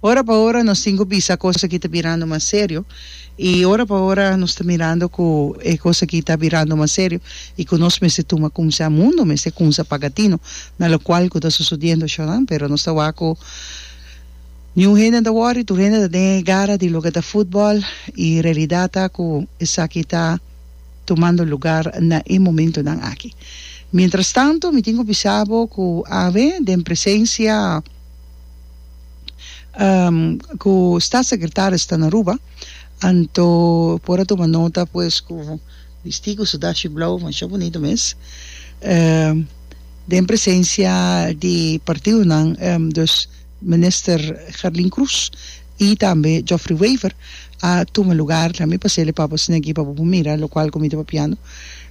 Ora pa ora nos tin cu bisa cos aki ta birando mas serio y ora pa ora nos ta mirando cu e cos aki ta birando mas serio y cu nos mester tuma cumsa. Mundo mester cumsa paga tino na locual cu ta sucediendo ashoran pero nos ta wak cu niun hende no ta worry, tur hende ta den e gara di loke ta futbal y realidad ta cu esaki ta tumando lugar na e momentonan aki. Mientras tanto mi tin cu bisa bo cu awe den presencia. ku statssekretaris ta na Aruba anto por a tuma nota pues ku distigu su dashi blou masha bunito mes den presensia di partidonan dus minister Gerlin Cruz i tambe Jofrey Wever a tuma lugar tambe pa seli pa bosnan aki pa bo por mira lokual ku mi ta papiando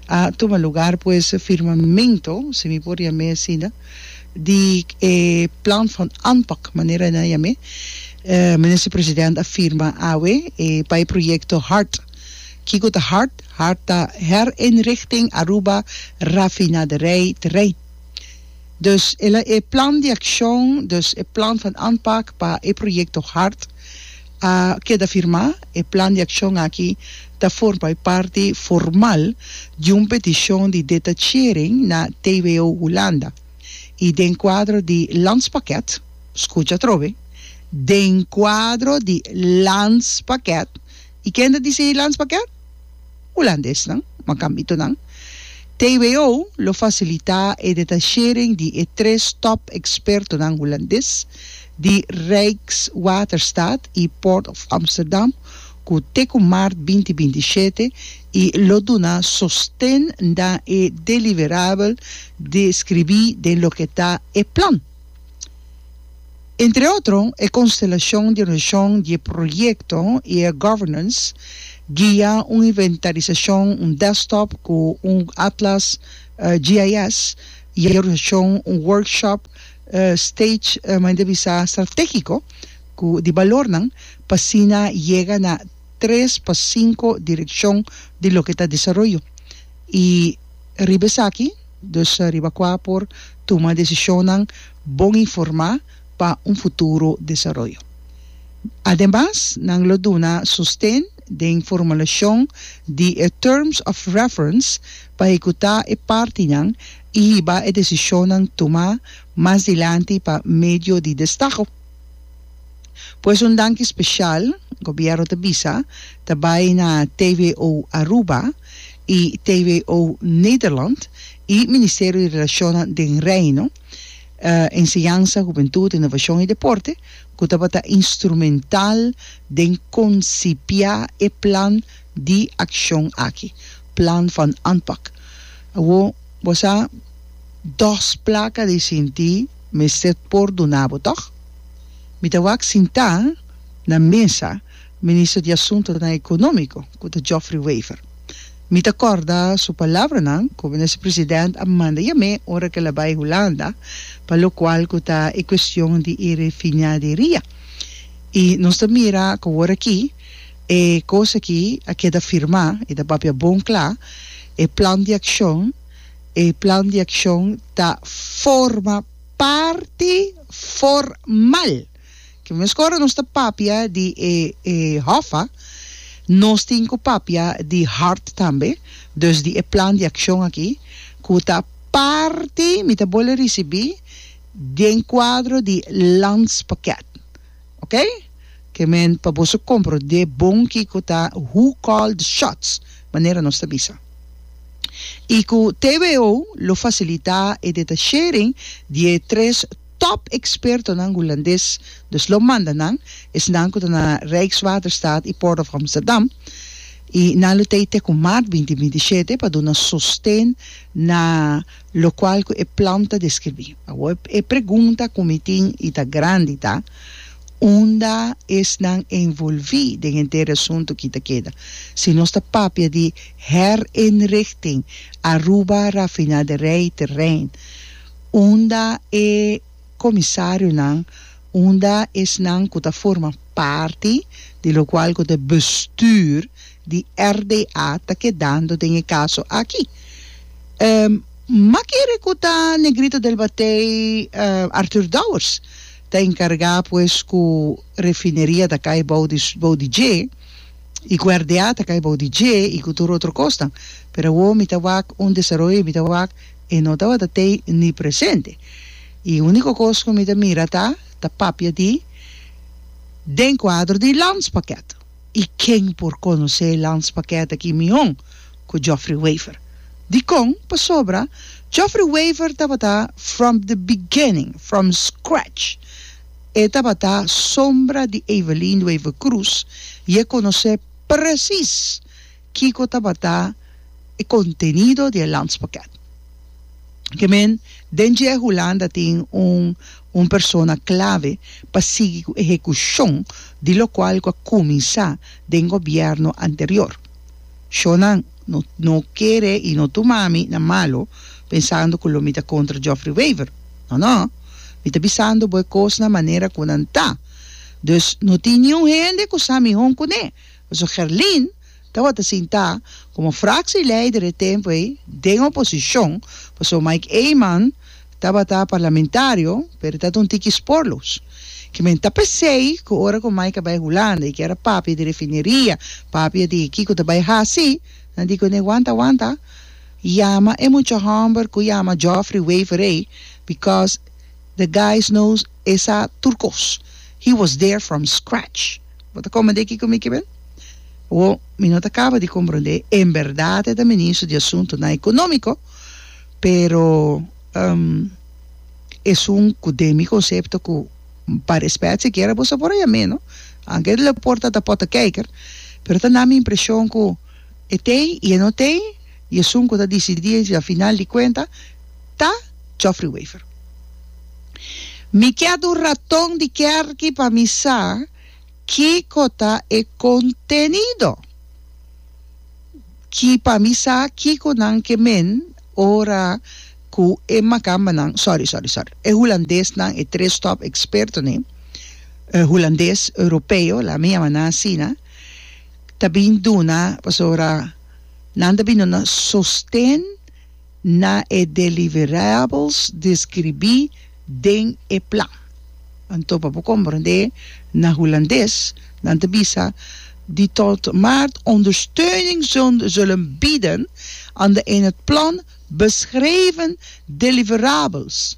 a tuma lugar pues firmamento si mi por yam'e asinda. di e Plan van Aanpak, manera e nan a yam'é, Minister President a firma awe e bai proyekto hard. Kiko ta hard? Hard ta Herinrichting Aruba Rafinaderij Terrein. Dus e plan di akshon, dus e Plan van Aanpak pa e proyekto hard, A keda firmá, e plan di akshon aki ta for pa e parti formal di un petishon di detachering na TWO Hulanda i den kuadro di Landspakket, skucha atrobe, den kuadro di Landspakket, i kende di si Landspakket? Hulandesnan, ma kambitonan. TWO lo fasilitá e detachering di e tres top ekspertonan Hulandes di Rijkswaterstaat i Port of Amsterdam ku te ku mart binti binti i shete i lo duna sosten na e deliverabel deskribí den loke ta e plan Entre otro, e konstelashon di reshon di e proyekto i e governance guia, un inventarisashon, un desktop ku un atlas GIS, i e reshon, un workshop stage maende bisa stratégiko ku di balornan pa asina yega na tres pa sinku direkshon di loke ta desaroyo i riba esaki, dus riba kua por tuma desishonnan. bon informá pa un futuro desaroyo. Ademas, nan lo duna sosten den formulashon di e Terms of Reference pa hekutá e partinan i hiba e desishonnan tumá mas dilanti pa medio di destago. Pues un danki spesial, Gobièrnu ta bisa, ta bai na TWO Aruba i TWO Nederland i Ministerio di Relashonnan den Reino, Enseñansa, Hubentud, Innovacion y Deporte, cu tabata instrumental den concipia e plan di accion aki, Plan van Aanpak. Awo bo sa dos placa di sinti mester por duna bo, toch? Mi ta wak sinta na mesa. Ministro di Asuntonan Ekonómiko, ku ta Geoffrey Wever. Mi ta kòrda su palabranan ku Minister President a manda yam'é ora ku el a bai Hulanda pa lokual ku ta e kuestion di e refinaderia. I nos ta mira ku awor aki e kos aki a keda firmá, i ta papia bon kla, e plan di akshon, e plan di akshon ta forma parti formal. Ki mes ora nos ta papia di e e hòf a, nos tin ku papia di hart tambe, dus di e plan di akshon aki ku ta parti, mi ta bole risibí, den kuadro di Landspakket. Oké? Ke men pa boso komprondé bon kiko ta who call the shots, manera nos ta bisa. I ku TWO lo fasilitá e detashering di e tres. Top expertonan Hulandes dus lo manda nan, esnan ku ta na Rijkswaterstaat i Port of Amsterdam, i nan lo tei te ku maart binti binti shete pa duna sosten na lokual ku e plan ta deskribí. Awor e pregunta ku mi tin i ta grandi ta, Unda esnan envolví den henter e asuntu ki ta keda? Si nos ta papia di herinrichting Aruba Rafinaderij Terrein, unda e komisarionan, unda esnan ku ta forma parti di lokual ku ta e bestuur di RDA ta kedando den e kaso aki. Makere ku ta Negrito del Batey Arthur Dowers ta enkargá pues ku refineria ta kai bou di bou di dje i ku RDA ta kai bou di dje i ku tur otro kosnan pero awo mi ta wak un desaroyo mi ta wak E no tabata tei ni presente. E unico cos cu mi ta mira ta ta papia di den cuadro di Landspakket. Y ken por conoce Landspakket aki mihon cu Geoffrey Wever. Dicon? Pasobra Geoffrey Wever tabata from the beginning, from scratch. E tabata sombra di Evelyn Wever-Croes y e conoce precies Kiko tabata e contenido di e landspakket? Ke men, den dje Hulanda tin un un persona clave pa sigui cu ehecucion di locual cu a cuminsa den gobierno anterior. Shonan no no kere y no tuma mi na malo pensando cu lo mi ta contra Geoffrey Wever. No no. Mi ta bisando bo e cosnan manera cu nan ta. Dus no tin niun hende cu sa miho cu ne. Pasobra Gerlin tabata sintá komo fraksieleider e tempu ei den oposishon, pasobra Mike Eman tabata parlamentario, pero e tabata un tiki sporloos. Ke men ta p'esei ku ora ku Mike a bai Hulanda i ke era papia di refineria, papia di kiko ta bai hasi, nan di kuné, Wanta, wanta, yama e mucha hòmber ku yama Geoffrey Wever ei, bikos the guys knows. E sa tur kos. He was there from scratch. Bo ta komprendé kiko mi kiber? Bo, mi no ta kaba di komprendé. En bèrdat e ta ministro di Asuntunan Ekonómiko, pero um esun ku den mi konsepto ku pa rèspèt sikiera bo sa por a yam'é no. Anke el e por ta ta pòrtakijker, pero ta na mi impreshon ku, E t'ei y e no t'ei y esun cu ta dicidi ey si a final di cuenta ta Geoffrey Wever. Mi kier un raton di kerki pa mi sa kico ta e contenido ki pa mi sa kico nan ke men ora cu e makambanan, sorry, sorry, sorry, e hulandesnan, e tres top expertonen, hulandes, europeo, laat me yama nan asina, ta bin duna pasobra nan ta bin duna sosten na e deliverables deskribí den e plan. Anto pa bo komprendé na Hulandes nan ta bisa Die tot maart ondersteuning zullen bieden aan de in het plan beschreven deliverables.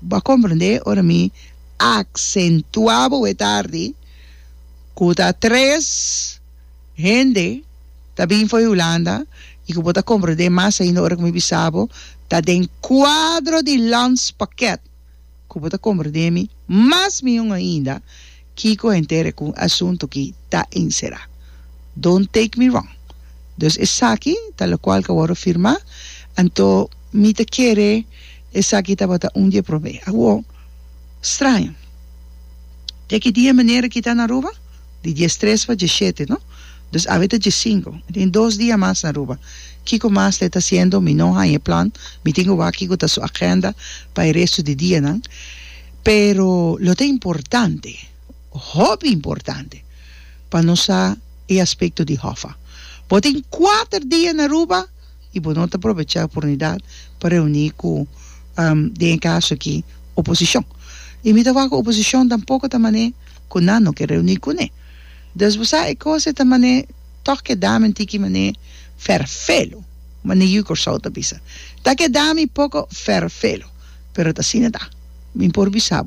Bo a komprendé ora mi aksentuá bo e tardi ku ta tres hende ta bin for Hulanda i ku bo ta komprendé mas ainda ora ku mi bisa bo ta den kuadro di Landspakket ku bo ta komprendé mi mas miun ainda. Kiko henter ku un asuntu ki ta enserá? Don't take me wrong. Dus esaki ta lokual ku a wòrdu firmá, anto mi ta kere esaki tabata un di e promé. Awor, straño, di aki dia manera ki ta na Aruba? Di diestres pa dieshete, no? Dus awe ta diesinko, mi tin dos dia mas na Aruba. Kiko mas ta e ta hasiendo? Mi no haña e plan, mi tin ku wak kiko ta su agenda pa e restu di dianan. Pero lo ta importante, hopi importante, pa nos sa e aspekto di Hoffa. Bo tin kuater dia na Aruba i bo no ta probechá e oportunidat pa reuní ku, den e kaso akí, oposishon. I mi ta wak ku oposishon tampoko ta manera ku nan no ke reuní kuné. Dòs bo sa e kos ei ta manera. Tok e dami un tiki mané ferfelu, mané Yu Corsou ta bisa. Ta ke dami poko ferfelu, pero ta asina ta. Mi por bisa bo.